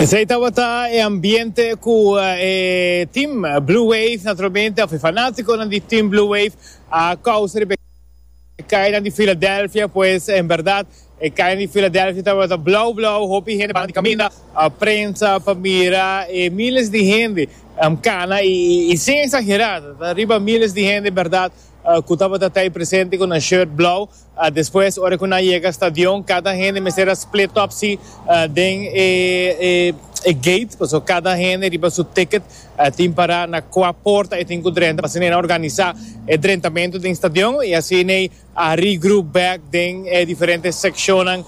Esei tabata e ambiente ku e team Blue Wave naturalmente òf e fanatikonan di team Blue Wave a kousa riba e kainan di Philadelphia pues en berdad E calle di Philadelphia tabata blau blau, hopi hende banda di caminda, prensa pa mira e miles di hende cana y y sin exagera ta riba miles di hende berdad cu tabata ta ahí presente cu nan shirt blau, despues ora cu nan yega stadion cada hende mester a split up si den e e gate pasobra cada hende riba su ticket tin para na cua porta y tin cu drenta, asina nan organiza e drentamento den stadion y asina. a regroup back den e diferente seccionnan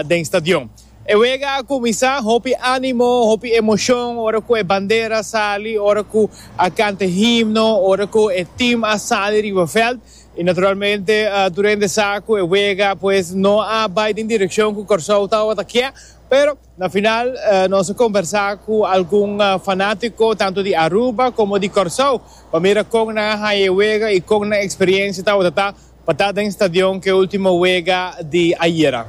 den stadion. E wega a cuminsa, hopi animo, hopi emocion ora cu e bandera a sali, ora cu a canta e himno, ora cu e team a sali riba veld y naturalmente durende sa cu e wega pues no a bay den direccion cu Corsou tawata kia, pero. Na final nos a kombersá ku algun fanátiko tantu di Aruba komo di Kòrsou pa mira kon nan a haña e wega i kon nan eksperiensia tabata ta pa ta den stadion ku e último wega di ayera.